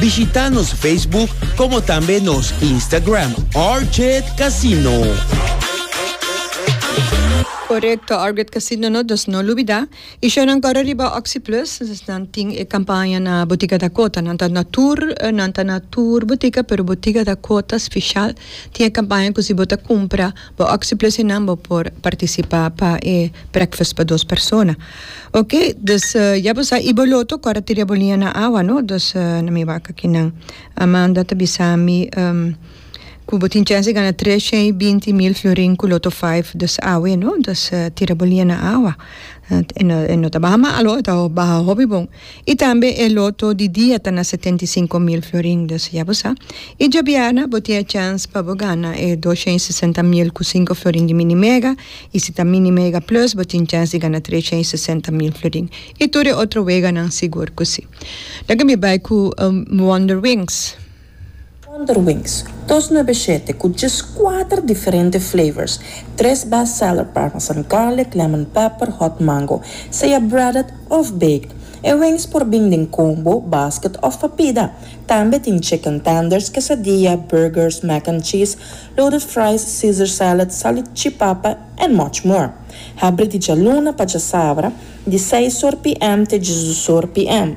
Bishita nos Facebook como tambe nos Instagram Arget Casino. Correcto, Arget Casino no, dus no lubida. Y show nan corre riba Oxyplus, dus nan tin e campaña na Botica Dakota. Nan ta na tur, nan ta na tur botica, pero Botica Dakota special tin e campaña cu si bo ta cumpra Bo oxi plus e nan bo por participa pa e breakfast pa dos persona ok dus ya bo sa y bo loto cora tira bo liña na awa no dus na mi wak aki nan Amanda ta bisa mi cu bo tin chens di gana tres shen y binti mil florin cu loto five dus awe no dus tira bo liña na awa e no ta baha malo e ta baha hopi bon. I tambe e loto di dia ta na setenta i sinku mil florin, dus ya bo sa. I djabièrna bo tin e chèns pa bo gana e dosha i sesenta mil ku sinku florin di Mini Mega, i si ta Mini Mega Plus bo tin chèns di gana tresha i sesenta mil florin. I tur e otro weganan sigur ku si. Laga mi bai ku Wonderwings. Wonderwings, dos nabeshete ku djes kuater diferente flavors, tres best seller parmesan garlic, lemon pepper, hot mango, sea breaded òf baked. E wings por bin den combo, basket òf pa pida. Tambe tin chicken tenders, quesadilla, burgers, mac and cheese, loaded fries, caesar salad, salichipapa and much more. Habri di djaluna pa djasabra, di seis or PM te djesdusor PM.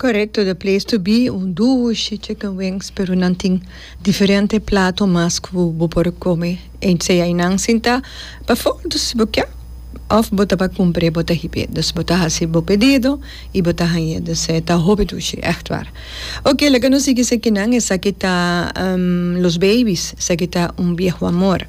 Correcto the place to be un duo shi chicken wings pero nan tin diferente plato mas cu bo por come en sea y nan sinta pafor dus si bo kia of bo ta pa cumpre bo ta hibe dus bo ta hasi bo pedido y bo ta hañe dus e ta hopi dushi echt war ok laga nos sigui esaki nan esaki ta los babies esaki ta un vieho amor.